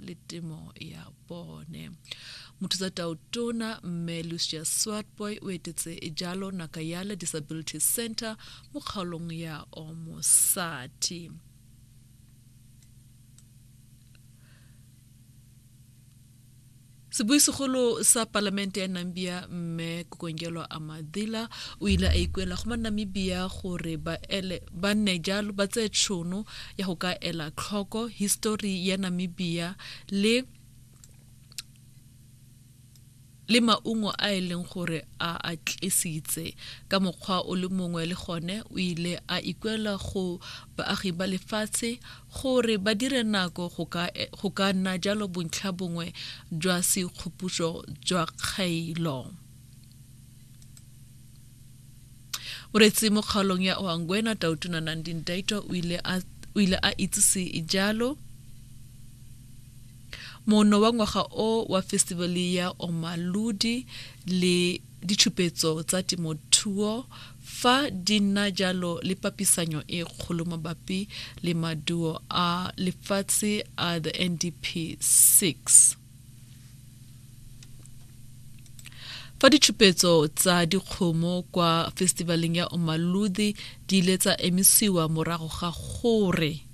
le temo ya bone mothusa taotona mme lucia swartboy o etetse jalo nakayala disability center mo kgaolong ya omosati Sebuisegolo sa Palamente ya Nambia, Mme Kokongelwa Amadhila, o ile a ikuela go Manamibia gore ba ele ba nne jalo ba tseye tšhono ya go ka ela tlhoko histori ya Namibia le le maungo a e leng gore a a tlisitse ka mokgwa o le mongwe le gone o ile a ikuela go baagi ba lefatshe Gore ba dire nako go ka go ka nna jalo bontlha bongwe jwa seikgopuso jwa kgailo. Moreetsi mo kgaolong ya Oangwena, Tautona Nandi Ndaitwa o ile a o ile a itsise jalo. Mono wa ngwaga o wa festivale ya Omaludi le ditšhupetso tsa temothuo fa di nna jalo le papisanyo e kgolo mabapi le maduo a lefatshe a the NDP 6. fa ditšhupetso tsa dikgomo kwa festivaleng ya Omaludi di ile tsa emisiwa morago ga gore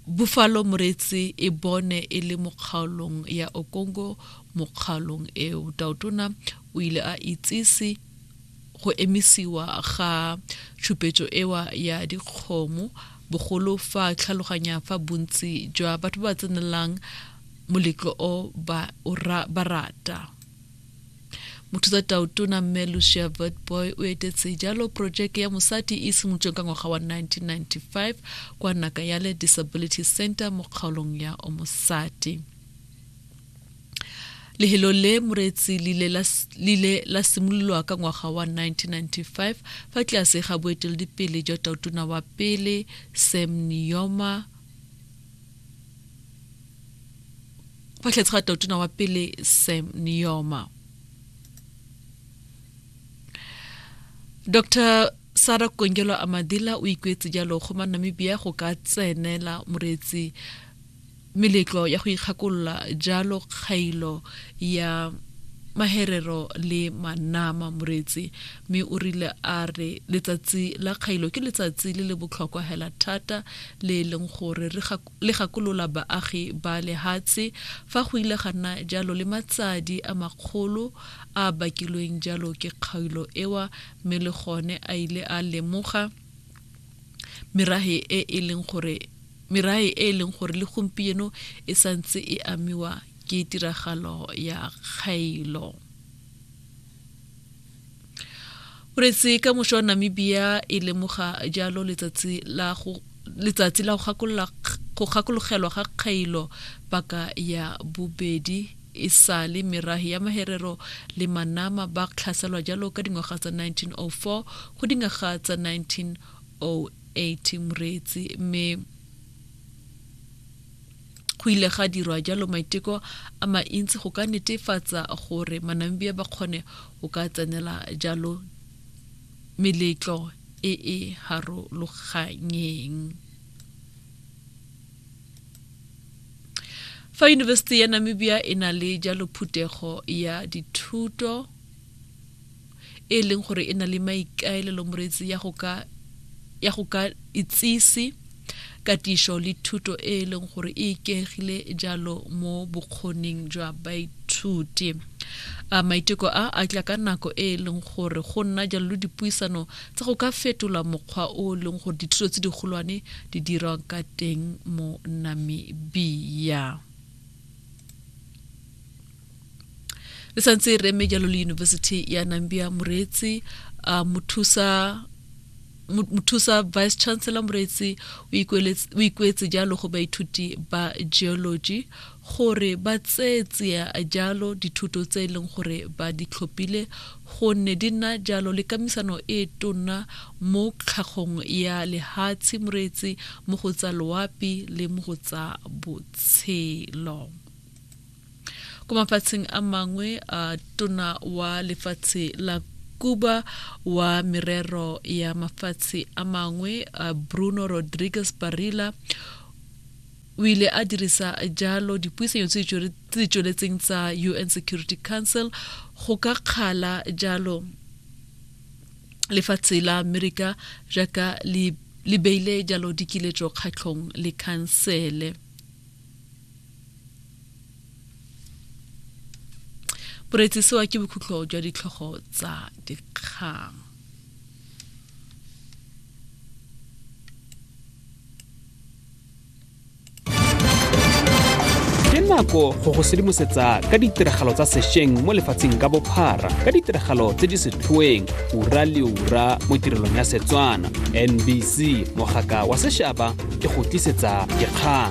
Buffalo Moreetsi e bone e le mo kgaolong ya Okongo mo kgaolong eo. Tautona o ile a itsise go emisiwa ga tshupetso ewa ya dikgomo bogolo fa tlhaloganya fa bontsi jwa batho ba tsenelang moletlo o ba rata mothusa taotona mme lucia vertboy o etetse jalo porojeke ya mosadi e simolotsweng ka ngwaga wa 1995 kwa nakayale disability center mo kgaolong ya omosadi lehelo le moretsi lile la simololwa ka ngwaga wa 1995 fa tlase ga boeteledipele jwa taotona wa pele sam nioma fa tlhetse ga totona wa pele sam nioma dr sara kongelo amadila o ikwetse jalo go ma namibia go ka tsenela moreetsi meletlo ya go ikgakolola jalo kgailo ya maherero le manama moreetsi Mme o rile a re letsatsi la kgailo ke letsatsi le le botlhokwa hela thata le e leng gore le gakolola baagi ba lehatshe fa go ile ga nna jalo le matsadi a makgolo a a bakilweng jalo ke kgailo ewa mme le gone a ile a lemoga merahe e e leng gore merahe e e leng gore le gompieno e santse e amiwa ke tiragalo ya kgailo. o retse ka mošwa wa namibia e lemoga jalo letsatsi la go letsatsi la go gakologelwa ga kgailo paka ya bobedi e sale merahi ya maherero le manama ba tlhaselwa jalo ka dingwaga tsa 1904 go dingwaga tsa 1908 moreetsi mme go ile ga dirwa jalo maiteko a maintsi go ka netefatsa gore manamibia ba kgone go ka tsenela jalo meletlo e e harologanyeng fa yunibesithi ya namibia e na le jalo phuthego ya dithuto e leng gore e na le maikaelelo moreetsi ya go ka ya go ka itsise katišo le thuto e e leng gore e ikegile jalo mo bokgoning jwa baithuti a maiteko a a tla ka nako e e leng gore go nna jalo le dipuisano tsa go ka fetola mokgwa o e leng gore dithuto tse digolwane di dirwa ka teng mo namibia re santse re eme jalo le university ya nambia moreetsi uh, mothusa mothusa vice chancellor moreetsi o ikuetse jalo go baithuti ba geology gore ba tseetsia jalo dithuto tse e leng gore ba di tlhophile gonne di nna jalo le kamisano e tonna mo tlhagong ya lehatshe moreetsi mo go tsa loapi le mo go tsa tshelo ko mafatsheng a mangwe a tona wa lefatshe la Cuba wa merero ya mafatshe a mangwe a Bruno Rodriguez Barilla o ile a dirisa jalo dipuisanyo tse di tsweletseng tsa UN Security Council go ka kgala jalo lefatshe la amerika jaaka le le beile jalo dikiletso kgatlhong le khansele boreetsi sewa ke bokhutlo jwa ditlhogo tsa dikgang ke nako go go sedimosetsa ka ditiragalo tsa sešweng mo lefatsheng ka bophara ka ditiragalo tse di setlhoeng ura le ura mo tirelong ya setswana nbc mogaka wa sešaba ke go tlisetsa dikgang